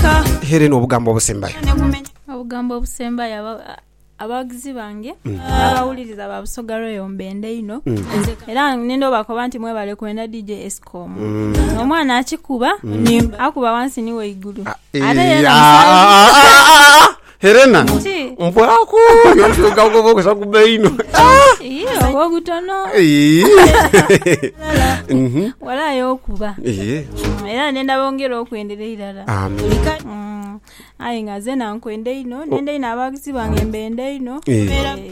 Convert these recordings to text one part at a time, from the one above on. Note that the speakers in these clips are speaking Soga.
Ka Helen obugambo obusembayo. ne kumenya obugambo obusembayo aba- a- abawagizi bange n'abawuliriza ba Busoga Royal mbenda inho era nenda obakoba nti mwebale kwenda DJ Escom omwana akikuba akuba wansi ni waigulu Ah, ate eh, yena ah, musayi ah, ah, ah, ah, ah. Helena Ki? mpaaku kakubuuza ku baino Ii, oba obutono Ii. Mhm. walaayi okuba Ii. Mm, era nenda bongere okwendera irala Amen. Mm, aye nga zena nkwenda inho nenda inho abaguzi bange mbenda inho Ii. Eh,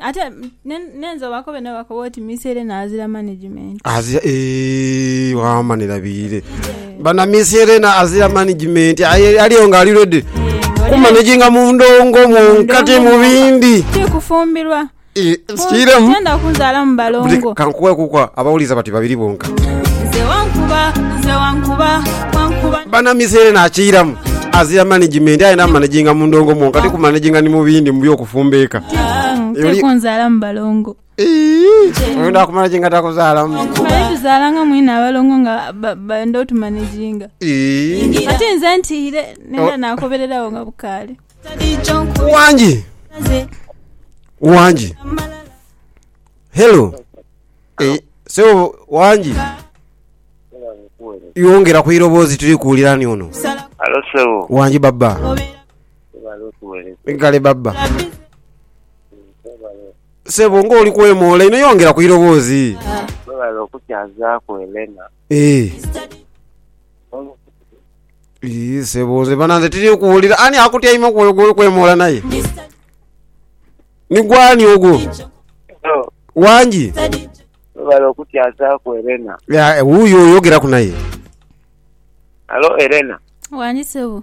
Ate nenze obakobe nabo bakobe oti miseere na azira management. Azira eeh wama ni labiire. Bana miseere na azira management aliyo nga ali ready. Ku managing mu ndongo mu nkati mu bindi. Ti kufumbirwa. Eh, sikiremu. Tenda kunzala mu balongo. Kankuwe kukwa abawuliza bati babiri bonka. Nze wankuba, nze wankuba, wankuba. Bana miseere na akiramu. Azira management ayenda managing mu ndongo mwonka ti ku managing ni mu bindi mu byoku Fumbiika. Oli- tekunzaalamu balongo Eeii, Oyenda kumala ki nga takuzaalamu? male tuzaalanga mwine abalongo nga ba- benda otumaniginga Eeii. ate nze ntiire Oh. nenda nakobererawo nga bukaale Wangi. Wangi. Hello. Eh, sebo wangi. Yongera ku iroboozi tuli kuwulira ni ono. Alo sebo. Wangi baba. Webale otuwereza. Kale baba. Webale. Sebo nga oli kwemoola ino yongera ku iroboozi. Webale okukyazaaku Elena. Eh. Ii sebo nze bana nze tiri kuwulira ani akutyaime ku oyo gwoli kwemoola naye. Ni gwani ogwo? Hello. Wangi. Webale okukyazaaku Elena. Ya, eh, wuuyo oyogeraku naye. Hello Elena. Wangi sebo.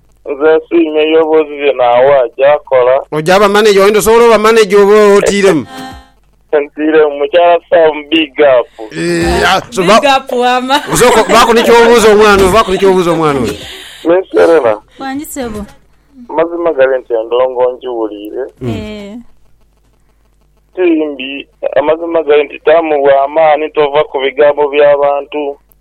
Nze nsiimye Yobu ebyo byona Awa gy'akola. Oja ba manager wayenda osobola oba manager oba otiiremu. Ntiiremu mukyala Sam big up. Eeh, ah, so ba- Big up wama. Osooka baako ni ky'obuuza omwana oyo, baako ni ky'obuuza omwana oyo. Miss Serena, Wangi sebo. amazima gali nti endongo ngiwuliire, Eh. ti mbi. Amazima gali nti taamu bwa maani, tova ku bigambo by'abantu.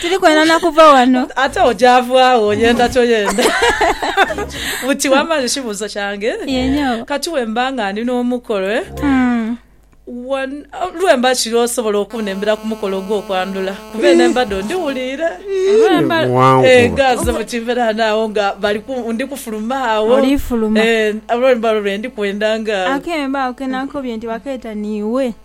Tiri kwenda na kuva wano. Ate ojavaagho oyenda toyenda. Buti wamanya ekibuuzo kyange? Kati wemba nga ndi n'omukolo, lwemba kiro osobola okunembera ku mukolo ogw'okwandhula? Kuba eno embadho ndhiwuliire. Ghazze buti mberaano agho nga ndi kufuluma agho. Olifuluma. Olwemba lwendi kwendanga agho. Akemba ako ke naakukobye nti bakeeta niiwe.